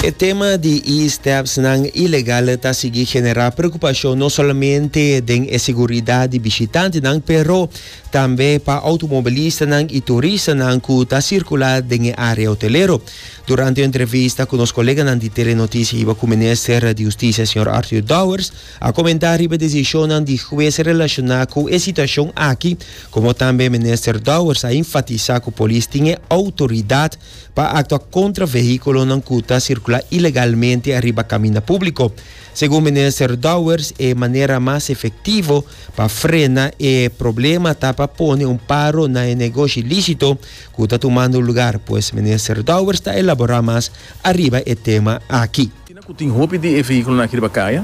E tema di e-stepsnan ilegal ta sigui generá preokupashon no solamente den e seguridat di bishitantenan pero tambe pa outomobilistanan i turistanan ku ta sirkulá den e área hotelero. Durante un entrevista ku nos koleganan di Telenoticia Hiba ku Minister di Hustisia señor Arthur Dowers a komentá riba desishonnan di hues relashoná ku e situashon aki komo tambe Minister Dowers a enfatisá ku polis tin e outoridat pa aktua kontra vehíkulonan ku ta sirkulá ilegalmente ariba kaminda públiko. Segun minister Dowers e manera mas efektivo pa frena e problema ta pa pone un paro na e negoshi lísito ku ta tumando lugar, pues minister Dowers ta elaborá mas ariba e tema aki. Kina ku tin hopi di e vehíkulonan aki riba kaya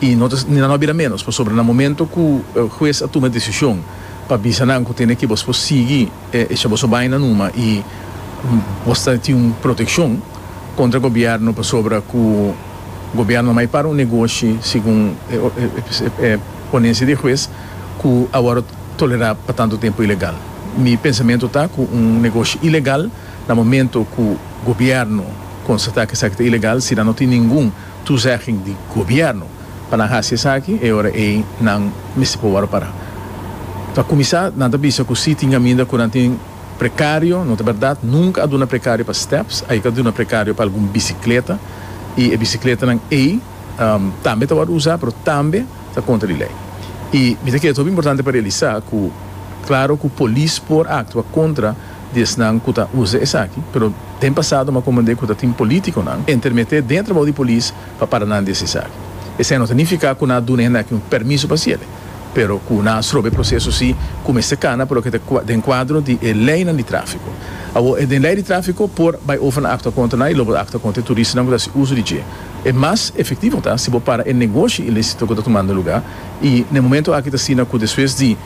i no ta ni nan no a bira ménos pasobra na momentu ku hues a tuma e desishon pa bisa nan ku tene ke bos por sigui esha boso baina numa i bos ta tin un protekshon kontra gobièrnu pasobra ku gobièrnu a mai para un negoshi segun e ponensia di e hues ku a wòrdu tolerá pa tantu tempu ilegal. Mi pensamentu ta ku un negoshi ilegal. Na momento cu gobierno constata cu esaki ta ilegal, si nan no tin ningun toezegging di gobierno pa nan haci esaki, e ora ey nan mester por worde para. Pa cuminsa, nan ta bisa cu si tin caminda cu nan tin precario, no ta berdad, nunca a duna precario pa steps, a yeka duna precario pa algun bicicleta, y e bicicletanan ey tambe ta worde uza, pero tambe ta contra di ley. Y mi ta kere ta hopi importante pa realisa cu claro cu polis por actua contra. di esnan cu ta uza esaki, pero den pasado m'ha comandé cu ta tin politiconan entermete dentro bou di polis pa para nan di haci esaki. Esei no ta nifica cu nan a duna hende aki un permiso pa haci el'e, pero cu nan a strobe e proceso si cu mester cana pa loke ta den cuadro di e leynan di trafico. Awor, e den ley di trafico por bay over na actua contra nan y lo por actua contra e turistanan cu ta haci uso di dje. E mas efectivo ta si bo para e negoshi ilicito cu ta tumando lugar y n'e momento aki t'asina cu despues di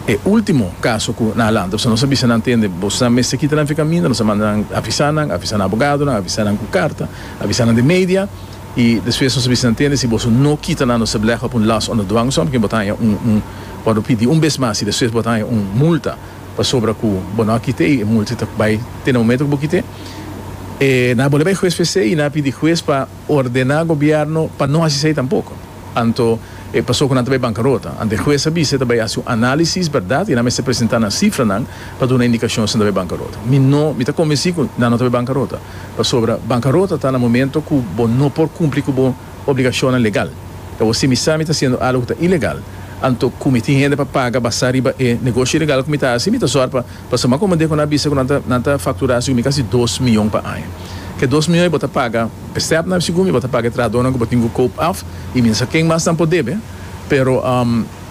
E ultimo caso cu nan a lanta, pasobra nos a bisa nan tende boso nan mester kita nan fi caminda, nos a manda nan avisa nan, avisa nan abogadonan, avisa nan cu carta, avisa nan den media, y despues nos a bisa nan tende si boso no kita nan nos a beleggen op un last under dwangsom, porque bo ta haya un un bo a lo pidi un bes mas y despues bo ta haya un multa pasobra cu bo no a kite y e multa ta bay te na momento cu bo kite, e nan a bolbe bay huez p'esey y nan a pidi huez pa ordena gobierno pa no haci esey tampoco. Anto e paso cu nan ta bay bancarota. Ante e hues a bisa e ta bay haci un analisis, berdad, y nan mester presenta nan cifranan pa duna indicacion si nan ta bay bancarota. Mi no, mi ta convenci cu nan no ta bay bancarota, pasobra bancarota ta na momento cu bo no por cumpli cu bo obligacionnan legal. Cabo si mi sa mi ta haciendo algo cu ta ilegal, anto cu mi tin hende pa paga basa riba e negoshi ilegal cu mi ta haci, mi ta zor pa pasa mas comodé cu nan a bisa cu nan ta, nan ta factura haci cu mi casi dos miyon pa aña. Cu e dos miyon e bo ta paga. Stepna si cu mi bo ta paga e trahadornan cu bo tin cu koop af y mi no sa ken mas nan por debe, pero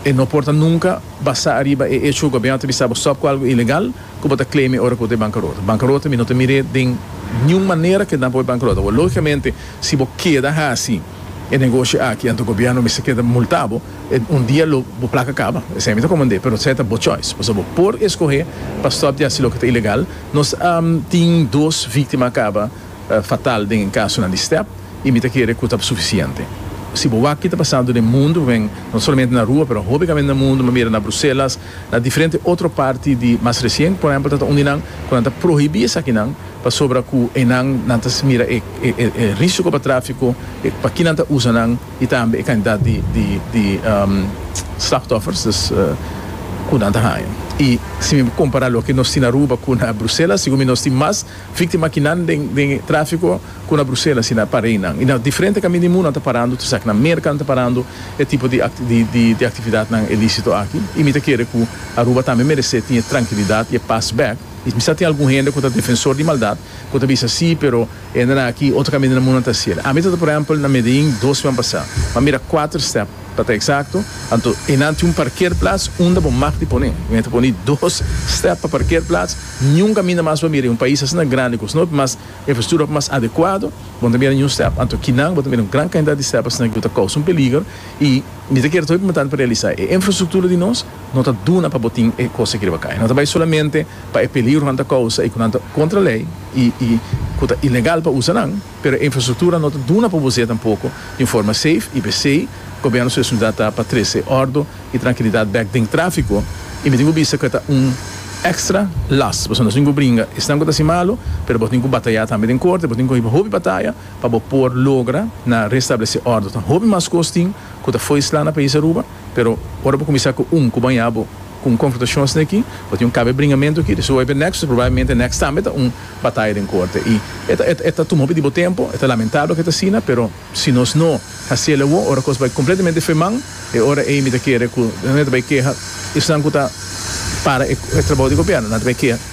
e no por ta nunca basa ariba e hecho cu gobierno ta bisa bo stop cu algo ilegal cu bo ta claime ora cu bo ta e bancarota. Bancarota mi no ta mir'e den niun manera cu e nan por bo e bancarota. Awor logicamente si bo keda haci e negoshi aki anto gobierno mester keda multa bo, un dia lo bo placa caba, esey mi ta comand'e, pero esey ta bo choice, pasobra bo por escoge pa stop di haci loke ta ilegal. Nos tin dos victima caba. Fatal den e kasonan di step y mi ta kere cu ta suficiente. Si bo wak ki ta pasando den mundo, wen no solamente na rua pero hopi gamente na mundo, manera na Bruselas, na diferente otro parti di mas recien por ehempel ta ta undie nan cu nan ta prohibi esakinan pasobra cu enan nan ta mira e e risico pa trafico, e pa ki nan ta usa nan y tambe e cantidad di di di slachtoffers dus cu nan ta haya. Y si mi compara loke nos tin Aruba cu na Bruselas, segun mi nos tin mas. Víktima aki nan den den e tráfiko ku na Bruselas i na Pareinan i na diferente kami di mundu nan ta parando tur esaki na Merka nan ta parando e tipo di di di aktividatnan ilísito aki i mi ta kere ku Aruba tambe meresé tin e trankilidat i e pas bèk i mi sa tin algun hende ku ta defensor di maldat ku ta bisa sí pero e hendenan aki otro kamiente na mundu nan ta hasiel ami ta ta por ehèmpel na Medellín dos siman pasá mi a mira kuater stèp Pa ta eksakto, anto e nan tin un parkerplats unda bo mag di pone. Mi a ta pone dos stèp pa parkerplats. Niun kaminda mas bo a mira i un pais asina grandi ku snop mas infrastruktura mas adekuado, bo no ta mira niun stèp. Anto kinan bo ta mira un gran kantidat di stèp asina ku ta kousa un peliger. I mi ta kere to'i muntante pa realisá e infrastruktura di nos no ta duna pa bo tin e kos aki riba kai. No ta bai solamente pa e peligro ku nan ta kousa i ku nan ta kontra lei i ku ta ilegal pa usa nan. Pero e infrastruktura no ta duna pa bo zeta poko den forma seif i pesei Gobernu su responsabilidat ta pa trese ordo i trankilidat bek den trafiko i mi tin ku bisa ku e ta un ekstra las pasobra nos tin ku bringa esnan ku ta hasi malu pero bo tin ku bataya tambe den korte bo tin ku hiba hopi bataya pa bo por logra na restablese ordo tan hopi mas kos tin ku ta foisla na pais Aruba. Pero ora bo kuminsá ku un ku bañá bo ku un konfrontashon asina aki, bo tin un kabe bringamentu aki, so oi p'e nèkst, so probablemente e nèkst tambe ta un bataya den korte. I e ta tuma hopi di bo tempu, e ta lamentabel ku e ta asina, pero si nos no hasiel awor, ora kos bai kompletamente fe man, e ora ei mi ta kere ku nan e ta bai keha esnan ku ta para e trabou di gobièrnu, nan ta bai keha.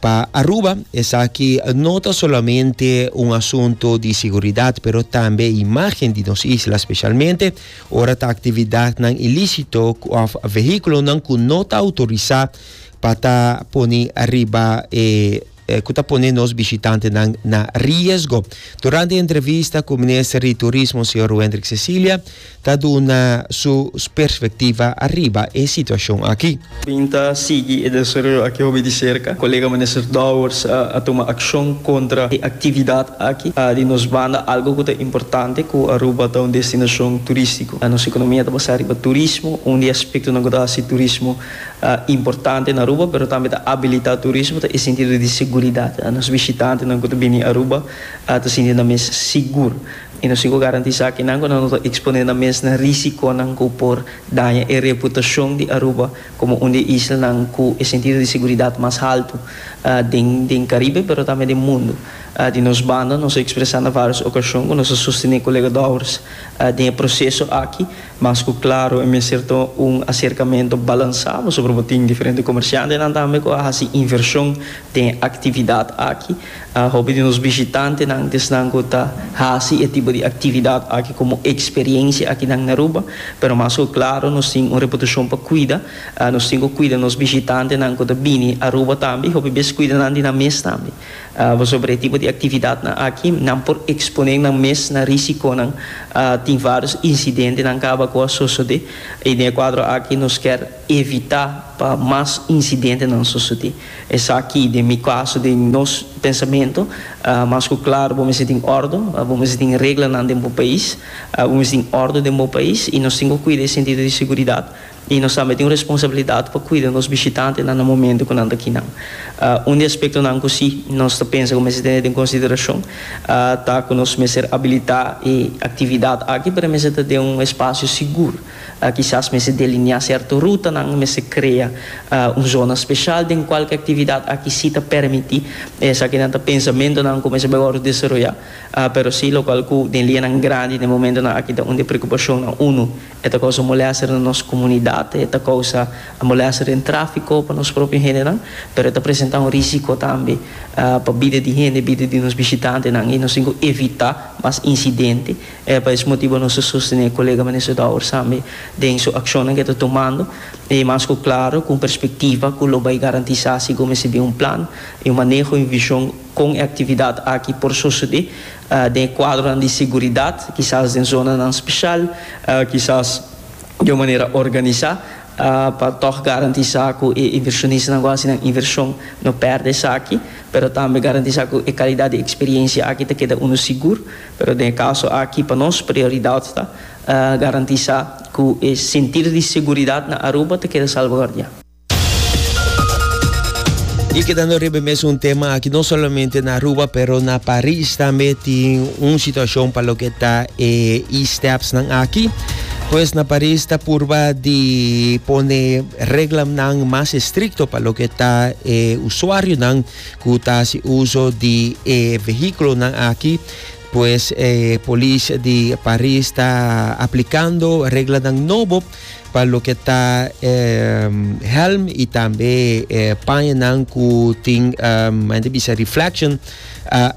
Pa Aruba, esaki no ta solamente un asunto di siguridad, pero tambe imagen di nos isla, specialmente ora ta actividadnan ilicito cu of vehiculonan cu no ta autorisá pa ta pone riba e cu ta pone nos bishitantenan na riesgo. Durante e entrevista cu Minister di Turismo, señor Wendrick Cecilia, ta duna su perspectiva ariba e situacion aki. Bin ta sigui e desaroyo aki hopi di cerca. Colega Minister Dowers a tuma accion contra e actividad aki. Di nos banda algo cu ta importante cu Aruba ta un destinacion turistico. Nos economia ta basa riba turismo. Un di e aspectonan cu ta haci turismo importante na Aruba pero tambe ta abilita turismo ta e sentido di seguridad. Nos bishitantenan cu ta bini Aruba ta sinti nan mes sigur. I nos tin ku garantisá kinan ku nan ta eksponé nan mes na risikonan ku por daña e reputashon di Aruba komo un di e islanan ku e sentido di seguridat mas haltu den Karibe pero tambe den mundu. Di nos banda nos a ekspresá na vários okashon ku nos a sostené kolegadòwers den e proseso aki Mas ku klaro e mester ta un aserkamentu balansá pasobra bo tin diferente komershantenan tambe ku a hasi invershon den e aktividat aki. Hopi di nos bishitantenan ta esnan ku ta hasi e tipo di aktividat aki komo eksperensia akinan na Aruba, pero mas ku klaro nos tin un reputashon pa kuida. Nos tin ku kuida nos bishitantenan ku ta bini Aruba tambe i hopi bes kuida nan di nan mes tambe. Pasobra e tipo di actividadnan aki, nan por expone nan mes na risiconan. Tin varios incidentenan caba cu a sosode y den e cuadro aki nos kier evita pa mas incidentenan sosode. Esaki den mi caso, den nos pensamento, mas cu claro bo mester tin ordo, bo mester tin reglanan den bo pais, bo mester tin ordo den bo pais y nos tin cu cuida e sentido di seguridad. I nos tambe tin un responsabilidat pa kuida nos bishitantenan na momentu ku nan ta kinan. Un di aspektonan ku si nos ta pensa ku mester tene den konsiderashon ta ku nos mester abilitá e aktividat aki, pero e mester ta den un espasio sigur. Kisas mester deliniá sèrto rutanan, e mester krea un zona speshal den kual ku e aktividat aki si ta permití. Esaki nan ta pensamentunan ku mester bai wòrdu desaroyá, pero si lokual ku den lianan grandi den momentunan aki ta un di e preokupashonnan unu E ta kousa molèster na nos komunidat, e ta kousa molèster den tráfiko pa nos propio hendenan, pero e ta presentá un rísiko tambe pa bida di hende, bida di nos bishitantenan i nos tin ku evitá mas insidente. E pa es motibu nos ta sostené e kolega Minister Douwers tambe den su akshonnan ku e ta tumando, i mas ku klaro ku un perspektiva ku lo bai garantisá sigó mester bin un plan, un maneho i un vishon kon e aktividat aki por sosodé. Den e kuadronan di siguridat, kisas den zonanan speshal, kisas di un manera organisá, pa tòg garantisá ku e invershonistanan ku a hasi nan invershon no pèrdè esaki, pero tambe garantisá ku e kalidat di eksperiensia aki ta keda unu sigur. Pero den e kaso aki pa nos prioridat ta garantisá ku e sentir di siguridat na Aruba ta keda salvaguardiá. Y kedando riba e mes un tema aki, no solamente na Aruba, pero na Paris tambe tin un situacion pa loke ta e e-steps nan aki. Pues na Paris ta purba di pone reglamnan mas estricto pa loke ta e usuarionan cu ta haci uso di e vehiculonan aki. Pues e polis di Paris ta aplicando reglanan nobo pa loke ta e helm y tambe e paña nan cu tin mente bisa reflection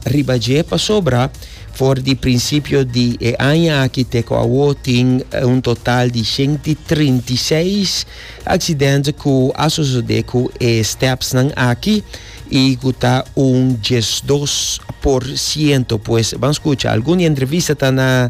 riba dje pasobra for di principio di e aña aki te cu awo tin un total di ciento treinta y seis accidente cu a sosode cu e steps nan aki y cu ta un diesdos por ciento pues ban scucha algun di e entrevista ta na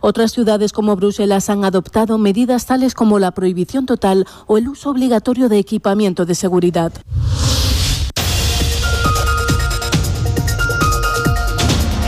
Otras ciudades como Bruselas han adoptado medidas tales como la prohibición total o el uso obligatorio de equipamiento de seguridad.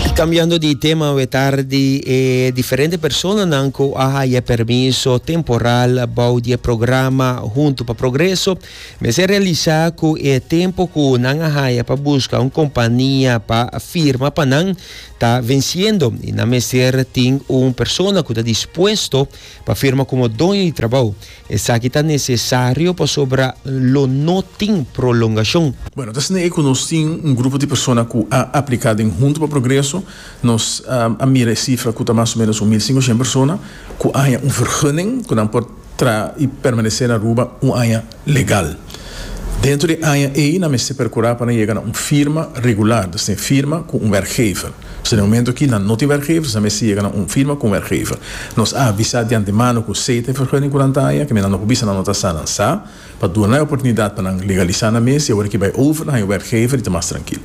Y cambiando di tema awe tardi e diferente personanan cu a haya e permiso temporal bou di e programa Hunto pa Progreso mester realisa cu e tempo cu nan a haya pa busca un compania pa firma pa nan ta venciendo y nan mester tin un persona cu ta dispuesto pa firma como doño di trabao. Esaki ta necesario pasobra lo no tin prolongacion. Bueno, ta asina e cu nos tin un grupo di persona cu a aplica den Hunto pa Progreso. Nos a mira e cifra cu ta mas o menos un mil singoshen persona cu a haña un vergunning cu nan por. tra i permanesé na Aruba un aña legal. Dentro di e aña ei nan mester perkurá pa nan yega na un firma regular, dus tin firma ku un wèrkgever. So den momentu aki nan no tin wèrkgever, nan mester yega na un firma ku un wèrkgever. Nos a avisá di antemano ku si ta e vergunning ku nan ta haña, kende nan no por bisa nan no ta sa, nan sa. Pa duna e oportunidat pa nan legalisá nan mes i awor aki bai over nan e werkgever i ta mas trankil.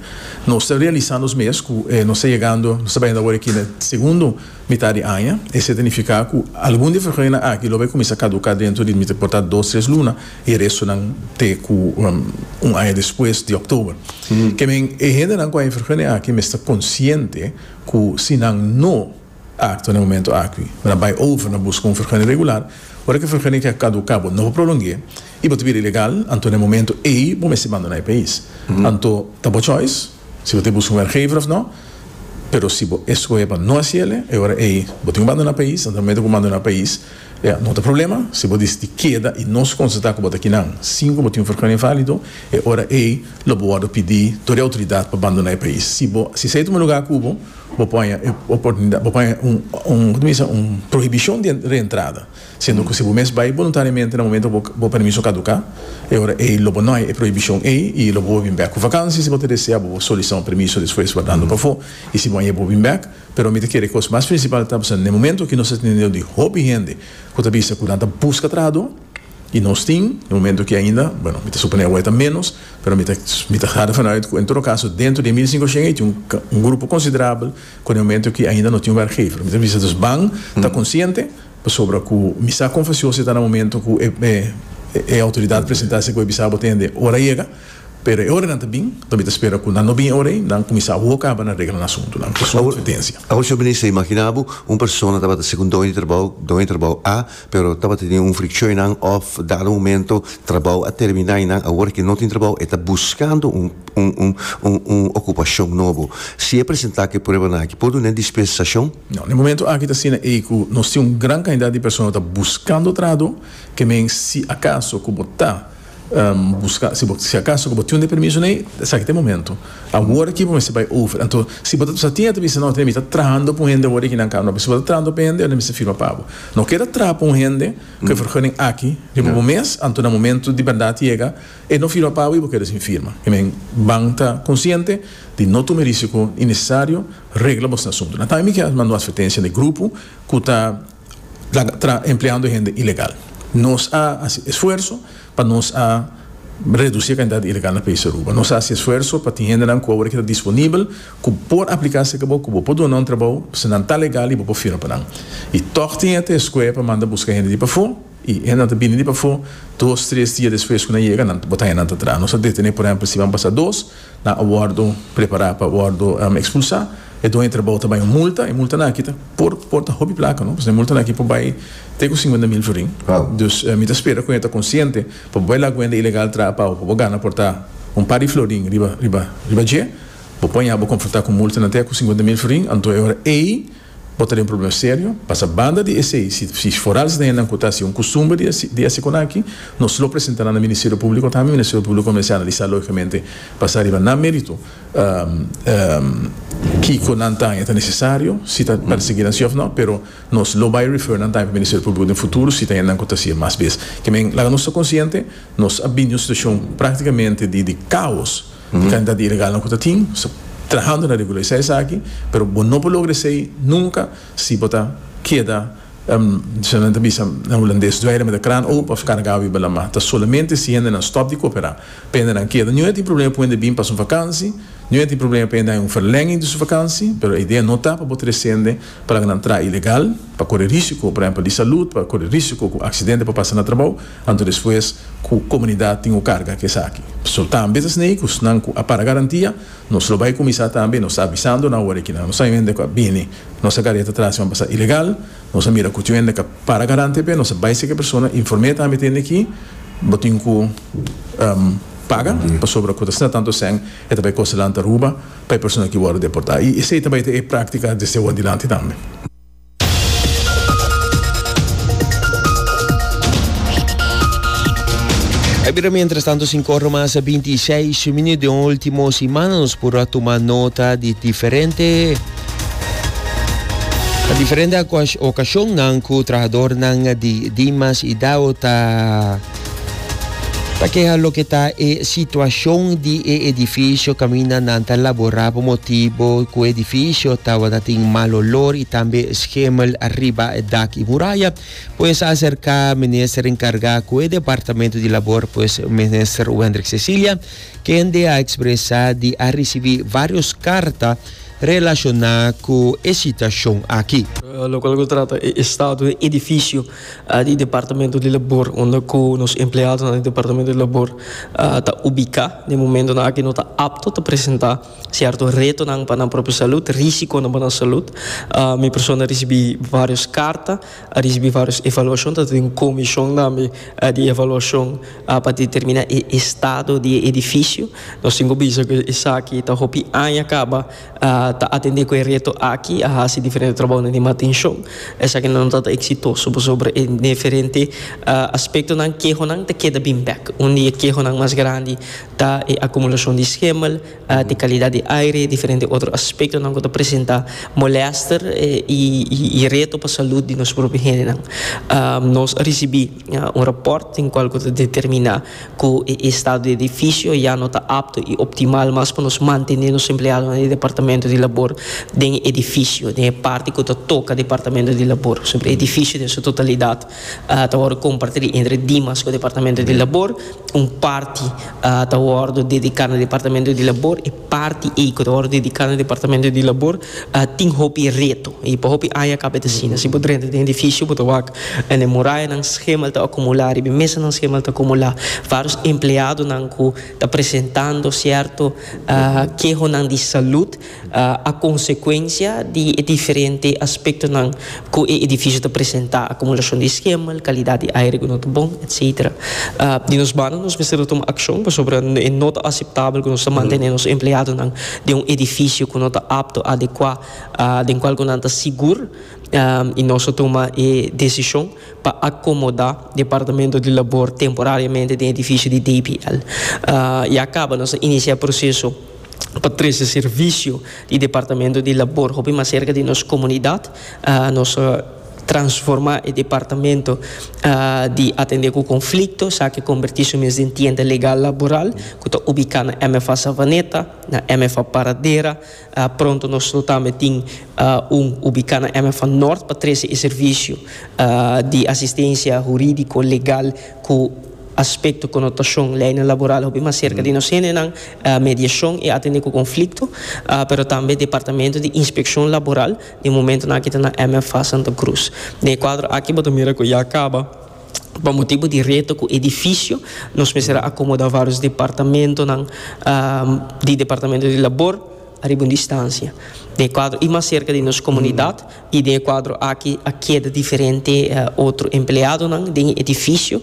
Nos ta realisá nos mes ku nos ta yegando, nos ta baindo awor aki na segundo mitá di aña, esei ta nifiká ku algun di e vergunennan aki lo bai kuminsá kaduká dentro di mi ta portá dos tres luna i e restonan te ku un aña despues di òktober. Ke men e hendenan ku a e vergunen aki mester konsiente ku si nan no. Akto na momento aki. Bo ta bai over na buska un fergeni regular, ora ki e fergeni aki a kaduká bo no por prolong'é i bo ta bira ilegal, anto na e momento ei bo mester bandoná e pais. Anto ta bo choice si bo ta buska un werkgever òf no, pero si bo eskohé pa no hasi el'e, e ora ei bo tin ku bandoná pais, anto na momento ku bo bandoná pais ya no ta problema, si bo disidí keda i nos konstatá ku bo ta kinan sin ku bo tin un fergeni inválido, e ora ei lo bo wòrdu pidí dor e outoridat pa bandoná e pais. Si bo si esei ta un lugá ku bo. Bo pone e oportunidad, bo pone un, un, koto mi bisa, un prohibicion di reentrada, siendo cu si bo mes bay voluntariamente na momento cu bo permiso caduca, e ora ey lo bo no hay e prohibicion ey y lo bo por bin bek cu vakantie, si bo ta desea bo por solicita un permiso despues wardando pafo y si bo a yebbo bin bek, pero mi ta kere cos mas principal ta, pasobra n'e momento aki nos ta tene un dios di hopi hende cu ta bisa cu nan ta busca trahador. Y nos tin e momento ki ainda, bueno, mi ta suponé awe ta menos, pero mi ta mi ta harda fala uit ku en todo kaso dentro di e mil i sinkoshèn ei tin un un grupo konsiderabel ku den momento ki ainda no tin un wèrkgever. Mi ta bisa dus ban ta konsiente pasobra ku mi sa kon fasioso e ta na momento ku e e e outoridat presentá esei ku e bisa bo tende ora a yega, pero e ora nan ta bin, mi ta spera ku nan no bin e ora ei, nan kuminsá a woka pa nan regla nan asuntunan. Esei ta un advertencia. Awor, señor Minister, imaginá bo un persona tabata segun doño di trabou, doño di trabou A Pero tabata tin un frikshon i nan òf dado momento trabou a terminá i nan awor ke no tin trabou e ta buskando un un un un un okupashon nobo. Si e presentá ku e pruebanan aki por dun'é dispensashon? No, den momento aki ta asina ei ku nos tin un gran kantidat di persona ku ta buskando trado, ke men si akaso ku bo ta Buska, si bo, si akaso ku bo tin un deprimiso nei, esaki ta e momentu. Awor aki bo mester bai over. Anto, si bo ta sa tin e ta bisa, no, mi ta trahando pa un hende awor aki nan kamer. Pero si bo ta trahando pa hende, yo no mester firma pa bo. No keda traha pa un hende ku e vergunning aki, riba bo mes, anto na momentu di bèrdat yega, e no firma pa bo i bo keda sin firma. I men, ban ta konsiente di no tuma e risiko innesesario, regla bosnan asuntu. Na tambe mi ke manda un advertensia na e grupo ku ta. ta empleando hende ilegal. Nos a hasi esfuerso pa nos a reduci e cantidad di ilegal na país Aruba. Nos a hasi esfuerso pa tin hendenan cu awor e ta disponibel cu por aplica si cabo cu bo por duna un trabao pasobra nan ta legal y bo por firma pa nan. Y tog tin e ta escoge pa manda busca hende di pafo. I e nan ta bini di pafó dos, tres dia despues ku nan yega, nan ta botá e nan ta traha. Nos a detené, por ehèmpel, si ban pasa dos, nan a wòrdu prepará pa wòrdu ekspulsá. E doño di trabou ta bai un multa, e multanan aki ta por por ta hopi plaka, no, pasobra e multanan aki por bai te ku singuenta mil florin. Dus, mi ta spera ku nan e ta konsiente, pa bo bai la guenda ilegal traha pau, pa bo gana por ta un par di florin riba riba riba dje, bo por haña bo konfrontá ku multanan te ku singuenta mil florin, anto e ora ei Bo ta den problema serio, pasa banda di esei, si forales na hennan ku ta hasi un kustumber di hasi ekonaki, nos lo presenta nan na Ministerio Públiko, ta mi Ministerio Públiko ku mester analisá lógikamente basa riba nan mérito kiko nan ta haña ta nesesario, si ta persiguí nan si òf nò, pero nos lo bai refer nan ta haña pa Ministerio Públiko den futuro si ta hennan ku ta hasi e mas bes. Ke men, laga nos ta konsiente nos a bini un situashon práktikamente di kaos. E kantidat di ilegalnan ku ta tin trahando na regularisá esaki, pero bo no por logra esei nunka si bo ta keda, kiko nan ta bisa na hulandes, dweire met de kraan open of kargá wiba lamá. Ta solamente si hendenan stòp di koperá pa hendenan keda. Nihuen tin problema pa hende bin pasa un vakansi, nihuen tin problema pa hende haña un verlenging di su vakansi, pero e idea no ta pa bo trese hende pa laga nan traha ilegal, pa kore risiko, por ehèmpel, di salud, pa kore risiko ku aksidente por pasa na trabou. Anto despues ku komunidat tin ku karga ku esaki. So tambe ta snei ku snan ku a para garantia, nos lo bai kuminsá tambe nos ta avisando nan wòrdu e kinan nos a hende ku a bini nos a kareta tras i ban pasa ilegal, nos a mira ku tin hende ku a para garante p'e nos a bai seki persona inform'é tambe tende ki bo tin ku paga pasobra ku ta sna tantu esèn e ta bai kosa lanta Aruba pa e persona ki wòrdu deportá i esei ta bai ta e práktika desde awor dilanti tambe. Ta bira mientras tanto sin corro más a 26 minutos de último semana nos por a tomar nota de diferente a diferente ocasión nan cu trabajador nan di Dimas y Dao ta Ta keha loke ta e situacion di e edificio caminda nan ta labora pa motibo cu edificio tabata tin mal olor y tambe schemel riba e dak y muraya pues a acerca Minister encarga cu e Departamento di Labor pues Minister Wendrick Cecilia kende a expresa di a ricibi varios carta relaciona cu e situacion aki. locual cu trata e estado di e edificio. di Departamento di Labor unda ku nos empleadonan di Departamento di Labor ta ubiká. Den momentonan aki no ta apto ta presentá sierto retonan pa nan propio salut, risikonan pa nan salut. Mi persona a risibí vários karta, a risibí vários evaluashon, ta tin un komishon tambe di evaluashon pa determiná e estado di e edifisio. Nos tin ku bisa ku esaki ta hopi aña kaba. Ta atendé ku e reto aki, a hasi diferente trabounan di mantenshon. Esaki no ta ta eksitoso pasobra e diferente aspektonan, kehonan ta keda bin bèk. Un di e kehonan mas grandi ta e akumulashon di skemel, di kalidat di aire, diferente otro aspektonan ku ta presentá molèster i reto pa salut di nos propio hendenan. Nos a risibí. un rapòrt den kual ku ta determiná ku e estado di edifisio ya no ta apto i optimal mas pa nos mantené nos empleadonan di Departamento di Labor den edifisio, den e parti ku ta toka Departamento di Labor. Por sempel, edifisio den su totalidat ta wòrdu kompartí entre Dimas ku Departamento di Labor, un parti ta wòrdu dediká na Departamento di Labor, Parti ei cu ta worde dedica na Departamento di Labor tin hopi reto y pa hopi aña caba e ta asina. Si bo drenta den edificio bo ta wak na e morayanan schemal ta acumula, riba e mesanan schemal ta acumula varios empleadonan cu ta presentando cierto kehonan di salud a consecuencia di e diferente aspectonan. Ku e edifisio ta presentá akumulashon di iskemal, kalidat di aire ku no ta bon, etsetera. Di nos banda nos mester ta tuma akshon pasobra e no ta aseptabel ku nos ta mantené nos empleadonan den un edifisio ku no ta apto, adekuá, den kual ku nan ta sigur i nos a tuma e desishon pa akomodá Departamento di Labor temporariamente den edifisio di DPL. Ya kaba nos a inisiá e proseso. pa trese servisio di departamento di labor hopi mas serka di nos komunidat. Nos a transformá e departamento di atendé ku konflikto sa ke kombertí su mes den tienda legal laboral ku ta ubiká na MFA Savaneta, na MFA Paradera. Pronto nos lo tambe tin un ubiká na MFA Nort pa trese e servisio di asistensia hurídiko, legal ku aspekto konotashon lei laboral hopi mas serka di nos hendenan. mediashon i atendé ku konflikto, pero tambe Departamento di Inspekshon Laboral den momentunan aki ta na MFA Santa Krus. Den e kuadro aki bo ta mira ku ya kaba pa motibu di reto ku edifisio nos mester a akomodá vários departamentonan di Departamento di Labor ariba un distansia den e kuadro i mas serka di nos komunidat. I den e kuadro aki a keda diferente otro empleadonan den e edifisio.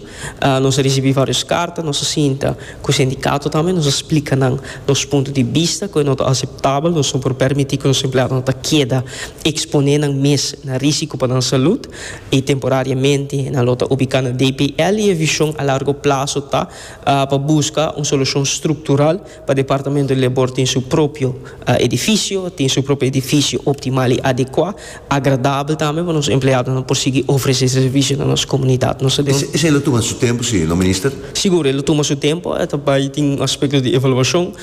Nos a risibí vários karta, nos a sinta ku sindikato tambe, nos a splika nan nos punto di bista, ku e no ta aseptabel, nos no por permití ku nos empleadonan ta keda eksponé nan mes na rísiko pa nan salùt, i temporariamente nan lo ta ubiká na DPL, i e vishon a largo plaso ta pa buska un solushon struktural. Pa departamento di labor tin su propio edifisio, tin su propio edifisio optimal i adekuá, agradabel tambe pa nos empleadonan por sigui ofresé servisio na nos komunidat. Nos ta duna un. Esei lo tuma su tempu si no Minister? Sigur, e lo tuma su tempu. E ta bai tin un aspekto di evaluashon.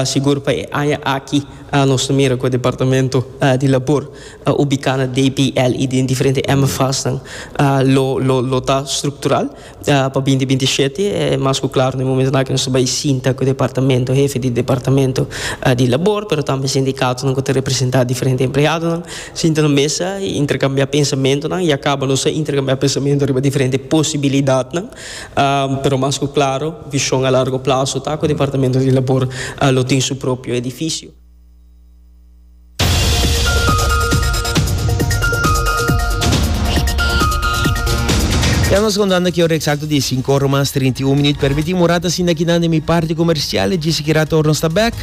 Sigur pa e aña aki nos ta mira ku e departamento di labor ubiká na DPL i den diferente MFASnan lo ta struktural. Pa binti binti i shete e mas ku klaru na e momentu nan ku nos ta bai sinta ku departamento hefe di departamento di labor pero tambe sindikatonan ku ta representá diferente empleadonan sinta na mesa i interkambiá pensamentunan ya kaba nos a interkambiá pensamentu riba diferente posibilidatnan pero mas ku klaru vishon a largo plaso ta ku departamento di labor lo tin su propio edifisio. Ya nos contando ki ora exacto di e cinco ora mas trinta y un minuut. Permiti un rato asina kinan den mi parti comercial. E djis kira tor nos ta back.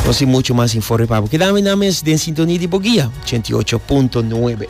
Nos tin mucho mas informe pa bo. Keda mi nan mes den sintonia di bo guia ochenta y ocho punto nuebe.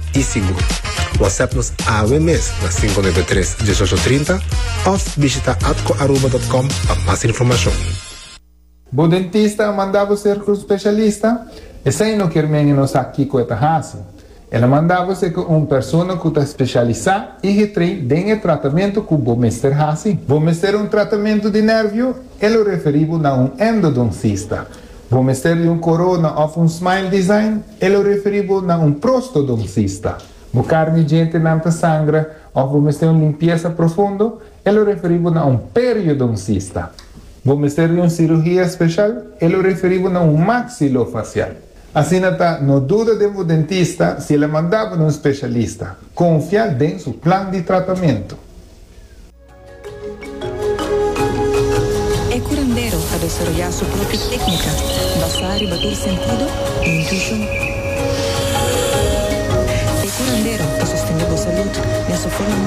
i sigur. Whatsapp nos awe mes na cinco nueve tres, dieshocho trinta of bishita atcoaruba dot com pa mas informacion. Bo dentista a manda bo ser un specialista? Esei no kier men e no sa kico e ta haci. El a manda bo ser cu un persona cu ta specialisa y getrei den e tratamento cu bo mester haci. Bo mester un tratamento di nervio? E lo referi bo na un endodoncista. Bo mester di un corona of un smile design? E lo referi bo na un prostodoncista. Bo carni djentenan ta sangra of bo mester un limpiesa profundo? E lo referi bo na un periodoncista. Bo mester di un cirugia special? E lo referi bo na un maxilofacial. Asina ta, no duda den bo dentista si el a manda bo na un specialista. Confia den su plan di tratamento. E curandero ta desaroyá su propio técnica basá riba tur sentido i intuishon. E curandero ta sostendé bo salud den su forma mas.